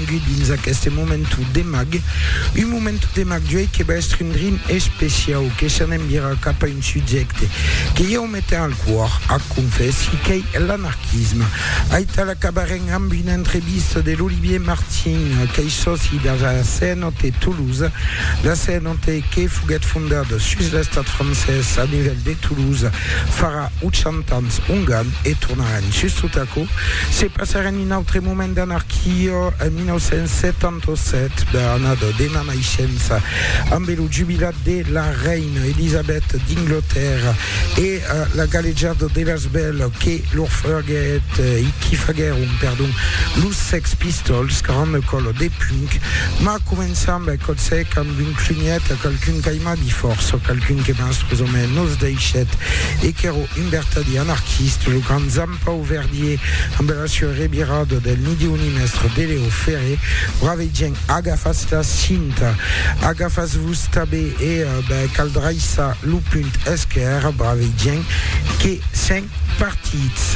Venguèt dins aqueste momentu de mag, un momentu de mag d'uèi que va èstre un drin especiau, que s'an envirat cap a un subjècte que ieu me ten al còr, ac confèssi, qu'ei l'anarquisme. Aital acabarem amb una entrevista de l'Olivier Martin, qu'ei sòci de la CNOT Toulouse, la CNOT que foguèt fondada sus l'estat francés a nivèl de Toulouse farà 80 ans ongan e tornaràn justot aquò, se passaràn un autre moment d'anarquia en 1977, bèl annada de ma naishença, ambe lo jubilat de la reina Elisabèth d'Inglotèrra e la galejada de las bèls que lor faguèt e qui faguèron, perdon, los Sex Pistols, granda còla de punk, mas començam, bèl còp sec, amb un clunièt a qualqu'un qu'aiman. Abi fòrça qualqu'un que mens pus o mens nos deishèt e qu'èro un vertadier anarquiste, lo grand Zampau Verdier ambe la sua revirada del ni Diu ni mèstre de Leo Ferré, brave gent agafatz la cinta, agafatz-vos tabé e ben cal draissar lo punt esquèrre, brave gent que sèn partits.